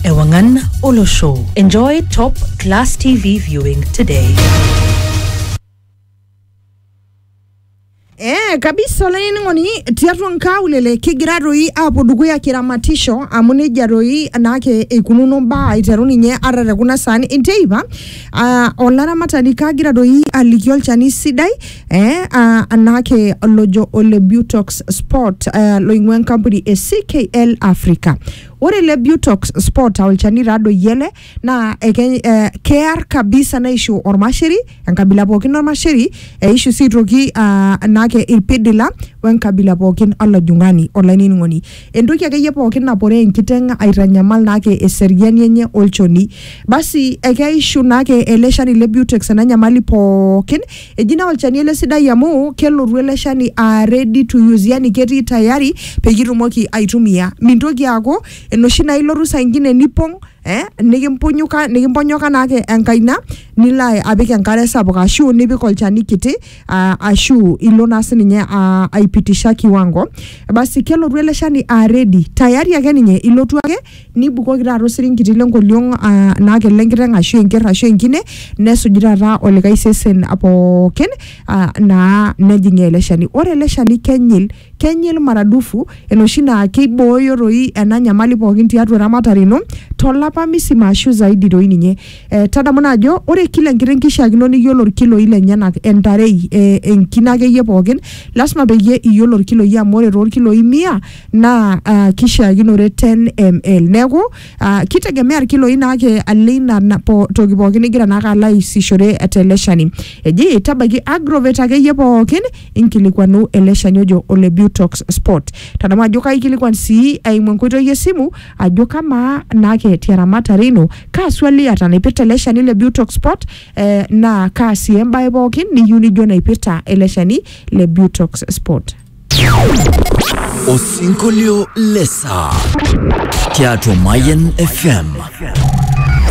Ewangan Olosho. Enjoy top class TV viewing today. Eh, kabisa olainining'oni tiatua nkaulele kigira toi aapuo dukuya kiramatisho amu nejia toi naake eikununo mbaa aiteru ninye ata te kuna saani enteipa uh, olaramatani kagira toi aliki olchani sidai eh, uh, naake lojo ole butox sport uh, loing'ua enkampuni e ckl africa Ore ele Butox spot aa olchani taa doi ele naa eke eh, kear kabisa neishu ormasheri enkabila pookin ormasheri eishu sii aitoki ah, naake irpidila wenkabila pookin olajung'ani olainining'oni. Entoki akeyie pookin naporoo enkiteng' aitanyamal naake eseriani enye olchoni. Basi ekeishu naake ele shani le Butex ena nyamali pookin Eji naa olchani ele sidai amu kelotu ele shani aa ready to use yani ketii tayari peyie itumoki aitumia. Mintoki aaku enoshi naa ilotu saa ingine nipong eh nikimpunyuka nikimponyoka naake enkaina nilo apik enkare sapuk ashu nipik olchani kiti aa ashu ilo naa sininye aa aipitisha kiwango. Basi kelotu ele shani aa ready tayari ake ninye ilotu ake nibukoki taata osiringiti lenkoriong uh, naa kele enkiteng ashu enkerr ashu enkine nesuju taata olikae sesen pookin uh, naa nejing ele shani ore ele shani kenyil kenyil maradufu enoshi naa keibooyo toi ena nyamali pookin tiatua eramatare ino tolapa misima ashu zaidi toi ninye eh, tadamu naa ajo ore kila enkiteng kishiakino niyiolo irkiloi lenyenak entarei eh, enkine akeyie pookin lasima peyie iyiolo irkiloi amu ore toorkiloi mia naa uh, kishiakinore 10 ml neeku uh, kitegemea irkiloi naake aleina na- po, toki pookin nigira naake alo aisishore tele shani eji tabaiki agrovet akeyie pookin inkilikuanu ele shani ojo ole butox sport tadamu ajo kaikilikuan sii eimu enkoitoi esimu ajo kamaa naake tiaramatare ino kaa swali iata naipirta ele shani le butox sport eh, naa kaa sii embae pookin niyieu nijo naipirta ele shani le butox sport Osinkolio le saa tiatua Mayian FM.